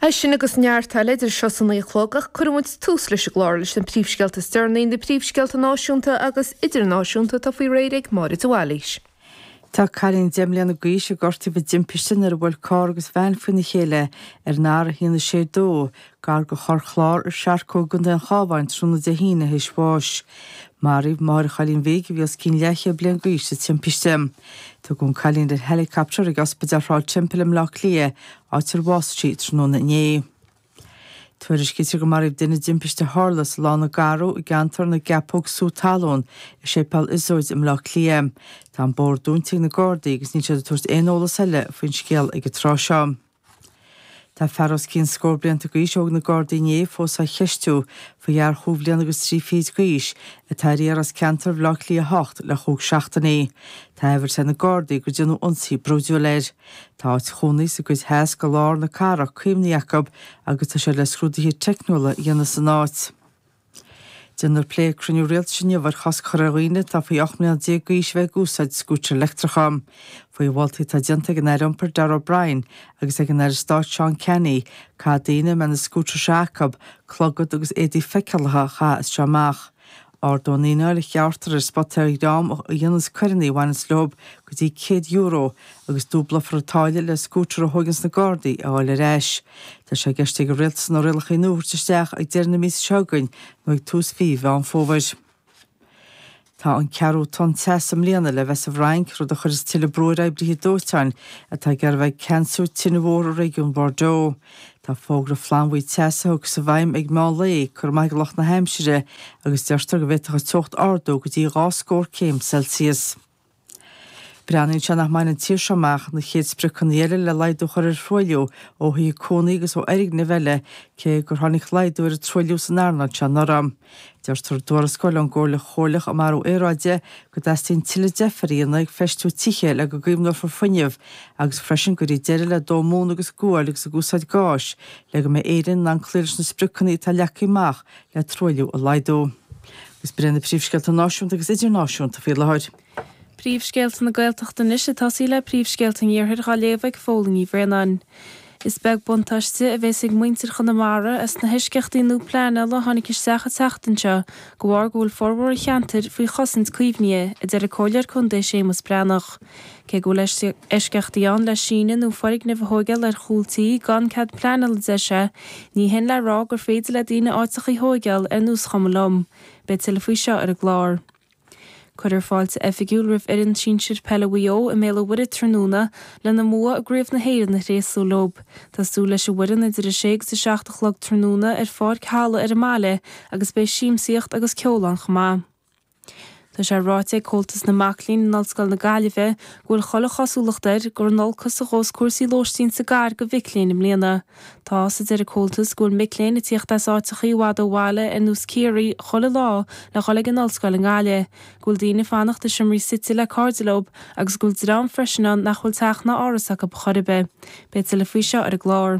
É sin agus neart eile idir seo is a naoi a chlog ach cuirfidh muid tús leis an gclár leis na príomhscéalta is deireanaí, na príomhscéalta náisiúnta agus idirnáisiúnta atá faoi réir ag Máire de Bhailís. Tá cailín deich mbliana d'aois a gortaíodh i dtimpiste nuair a bhuail carr agus veain faoina chéile ar an R162, gar do Chorr Chláir i Searcóg i gContae an Chabháin tráthnóna Dé hAoine théis bháis. Maraíodh máthair an chailín bhig a bhí os cionn leathchéad bliain d'aois sa timpiste. Tugadh an cailín ar helicopter ag Ospidéal Shráid an Teampaill i mBleá Cliath, áit ar bhásaigh sí tráthnóna inné. Tuairiscítear go maraíodh duine i dtimpiste a tharla sa Lána Garbh i gceantar na gCeapóg Sú Talún i Séipéal Iosóid i mBleá Cliath. Tá an bóthar dúnta ag na Gardaí agus níl siad ag tabhairt aon eolas eile faoin scéal ag an tráth seo. Tá fear os cionn scór blianta d'aois a thóg na Gardaí inné fós á cheistiú faoi fhear chúig bhliana agus trí fichid d'aois atá ar iarraidh as ceantar Bhaile Átha Cliath 8 le chúig seachtainí. Tá amhras ar na Gardaí gur déanadh ionsaí brúidiúil air. Tá áit chónaí sa gcuid theas de lár na cathrach caomhnaithe acu agus tá siad le scrúduithe teicniúla a dhéanamh san áit. Déanfar plé ag cruinniú Rialtais inniu ar chosc a chur ar dhaoine atá faoi 18 mbliana d'aois a bheith ag úsáid scútair leictreacha. Faoi mholtaí atá déanta ag an Aire Iompair Darragh O'Brien agus ag an Aire Stáit Seán Canney, caithfidh daoine, a mbeidh na scútair seo acu, clogad agus éadaí feiceálacha a chaitheamh as seo amach. Ardóidh an fhíneáil a ghearrtar ar an spota ar dhream a dhéananns coireanna a bhaineanns leo, go dtí €100 agus dúblófar an táille le scútar a thóigeanns na Gardaí a fháil ar ais. Tá sé i gceist ag an Rialtas na rialacha nua a thabhairt isteach ag deireadh na míosa seo againn nó ag tús mhí Mheán Fómhair. Tá an ceathrú tonn teasa i mbliana le bheith sa bhFrainc, rud a chuireas tuilleadh brú ar oibrithe dóiteáin atá ag iarraidh a bheith ag ceansú tine mhór i réigiún Bordeaux. Tá fógra flannbhuí teasa a thiocfas i bhfeidhm ag meán lae curtha amach ag lucht na haimsire, agus deirtear go bhféadfadh an teocht ardú go dtí dhá scór céim Celsius. Breathnaíonn sé nach mbainfidh an tír seo amach na chéad spriocanna eile le laghdú a chur ar thruailliú ó thithe cónaí agus ó fhoirgnimh eile, cé gur tháinig laghdú ar an truailliú san earnáil seo anuraidh. Deirtear i dtuarascáil ón gComhairle Chomhairleach um Athrú Aeráide go dteastaíonn tuilleadh deifir a dhéanamh ag feistiú tithe le go gcaomhnófar fuinneamh agus freisin go gcuirfí deireadh le dó móna agus guail agus ag úsáid gáis le go mbeidh Éirinn in ann cloí leis na spriocanna atá leagtha amach le truailliú a laghdú. Is b'iad na príomhscéalta náisiúnta agus idirnáisiúnta faoi láthair. Príomhscéalta na Gaeltachta anois ag tosaí le príomhscéalta an iarthair á léamh ag Fódhla Ní Bhraonáin. Is beag buntáiste a bheas ag muintir Chonamara as na heisceachtaí nua pleanála a tháinig isteach an tseachtain seo de bharr go bhfuil formhór an cheantair faoi chosaint caomhnaithe, a deir an Comhairleoir Contae Séamus Breathnach. Cé go bhfuil eisceachtaí ann le síneadh nó foirgnimh a thóigeáil ar chúl tí gan cead pleanáil a deir sé, ní shin le rá gur féidir le daoine áiteacha a thóigeáil ar nós chuma liom. Beidh tuilleadh faoi seo ar an gclár. Cuirfear fáilte oifigiúil roimh fhoireann sinsir peile Mhaigh Eo i mBéal an Mhuirthead tráthnóna lena mbua i gCraobh na hÉireann a thréaslú leo. Tá súil leis an bhfoireann idir a sé agus a seacht a chlog tráthnóna ar Pháirc Tallagh ar an mbaile agus beidh siamsaíocht agus ceol ann chomh maith. Tá sé ráite ag Comhaltas na Mac Léinn in Ollscoil na Gaillimhe go bhfuil chuile chosúlacht air gur in olcas a ghabhas cúrsaí lóistín sa gcathair do mhic léinn i mbliana. Tá's, a deir an Comhaltas, go bhfuil mic léinn ag tíocht as áiteacha i bhfad ó bhaile ar nós Ciarraí chuile lá le dhul ag an ollscoil i nGaillimh, go bhfuil daoine ag fanacht i seomraí suite le cairde leo agus go bhfuil dream freisin ann nach bhfuil teach ná áras acu chor ar bith. Beidh tuilleadh faoi seo ar an gclár.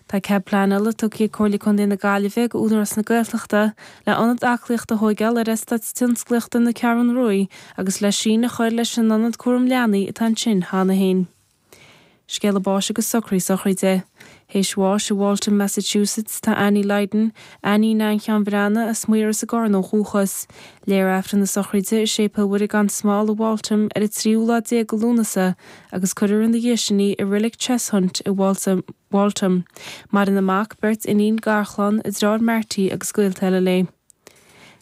Tá cead pleanála tugtha ag Comhairle Contae na Gaillimhe do Údarás na Gaeltachta le ionad aclaíochta a thóigeáil ar Eastáit Tionsclaíochta na Ceathrún Ruaidh agus le síneadh a chuir leis an ionad cúram leanaí atá ansin cheana féin. Scéala báis agus socruithe sochraide. Théis bháis i Waltham, Massachusetts, tá Annie Lydon, Annie Nan Sheáin Bhreathnaigh, as Maíros i gCarna ó dhúchas. Léifear Aifreann na sochraide i Séipéal Mhuire gan Smál i Waltham ar an tríú lá déag de Lúnasa, agus cuirfear ina dhiaidh sin í i Reilig Cheshunt i Waltham. Maireann a mac, beirt iníon, garchlann, a deartháir Marty agus gaolta eile léi.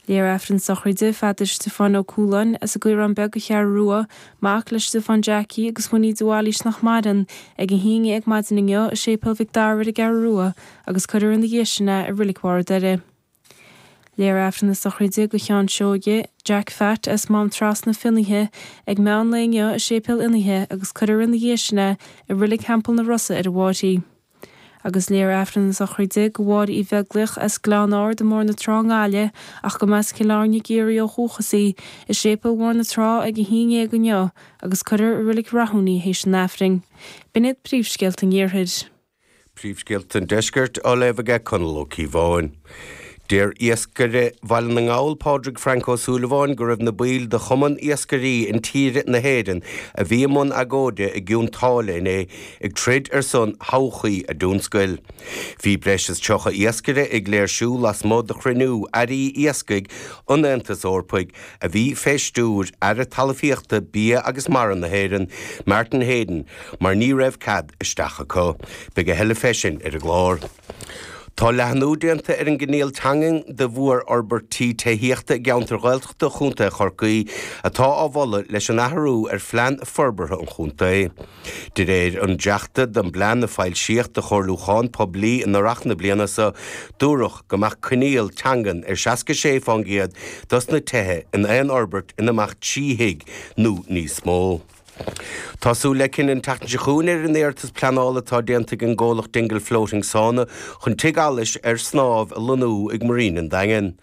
Léifear Aifreann sochraide Pheadair Stiofáin Ó Cualáin as an gCaorán Beag an Cheathrú Rua, mac le Stiofán Jackie agus Winnie de Bhailís nach maireann, ag a haon dhéag maidin inniu i Séipéal Mhic Dara ar an gCeathrú Rua agus cuirfear ina dhiaidh sin é i Reilig Bharr a' Doire. Léifear aifreann na sochraide do Sheán Seoighe, Jack Phat as Mám Trasna, Fionnaithe ag meán lae inniu i Séipéal Fhionnaithe agus cuirfear ina dhiaidh sin é i Reilig Theampall na Rosa ar an bhFairche. Agus léifear aifreann na sochraide do Mháire Uí Bheaglaoich as Gleann Ard i mBóthar na Trá i nGaillimh ach go mb'as Cill Airne i gCiarraí ó dhúchas í, i Séipéal Bhóthar na Trá ag a haon dhéag inniu agus cuirfear i Reilig Rathúin í théis an aifrinn. B'in iad príomhscéalta an iarthair. Príomhscéalta an Deiscirt á léamh aige Conall Ó Cíobháin. Deir iascaire Bhaile na nGall, Pádraig Frank Ó Súilleabháin, go raibh na baill de Chumann Iascairí Intíre na hÉireann a bhí i mbun agóide i gCionn tSáile inné ag troid ar son thodhchaí a dtionscail. Bhí breis is 30 iascaire ag léirsiú lasmuigh de chruinniú Airí Iascaigh an Aontais Eorpaigh. a bhí fé stiúir Aire Talmhaíochta, Bia agus Mara na hÉireann, Martin Heydon, mar ní raibh cead isteach acu. Beidh a thuilleadh fé sin ar an gclár. Tá leathnú déanta ar an gcoinníoll teangan do mhórfhorbairtí tithíochta i gceantair Ghaeltachta Chontae Chorcaí atá á mholadh leis an athrú ar Phlean Forbartha an Chontae. De réir an dréachta den bplean a foilsíodh do chomhairliúchán poiblí in earrach na bliana so, dúradh go mbeadh coinníoll teangan ar seasca sé fán gcéad dos na tithe in aon fhorbairt ina mbeadh trí thigh nó níos mó. Tá súil le cinneadh an tseachtain seo chugainn ar an iarratas pleanála atá déanta ag an gcomhlacht Dingle Floating Sauna chun tigh allais ar snámh a lonnú ag Marina an Daingin.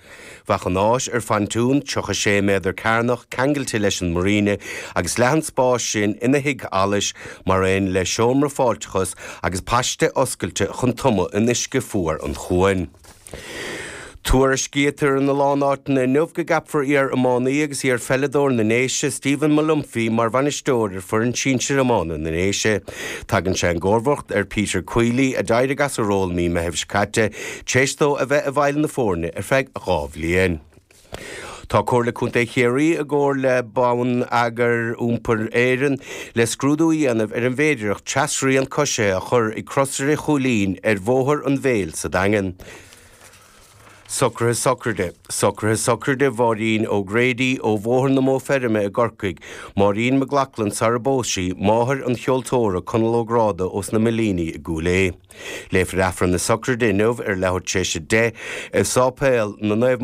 Bheadh an áis ar phontún 36 méadar cearnach ceangailte leis an Marina agus leath an spáis sin ina thigh allais mar aon le seomra fáilteachais agus paiste oscailte chun tumadh in uisce fuar an chuain. Tuairiscítear ina lán áiteanna inniu go gceapfar iar-iománaí agus iar-pheileadóir na nDéise, Stephen Molumphy, mar bhainisteoir ar foireann sinsir iomána na nDéise. Tagann sé i gcomharbacht ar Peter Queally a d'éirigh as a ról mí Meithimh seo caite Tar éis dó a bheith i bhfeighil na foirne ar feadh dhá bhliain. Tá Comhairle Contae Chiarraí i gcomhar le Bonneagar Iompair Éireann le scrúdú a dhéanamh ar an bhféidireacht trasrian coisithe a chur ag Crosaire Chúilín ar Bhóthar an Mhéil sa Daingean. Socruithe Sochraide Socruithe sochraide Mháirín O'Grady ó Bhóthar na Modhfheirme i gCorcaigh, Máirín McLoughlin sara bpós sí, máthair an cheoltóra Conal Ó Gráda ós na Millíní i gCúil Aodha. Léifear Aifreann na Sochraide inniu ar leathuair tar éis a deich i Sáipéal na Naomh.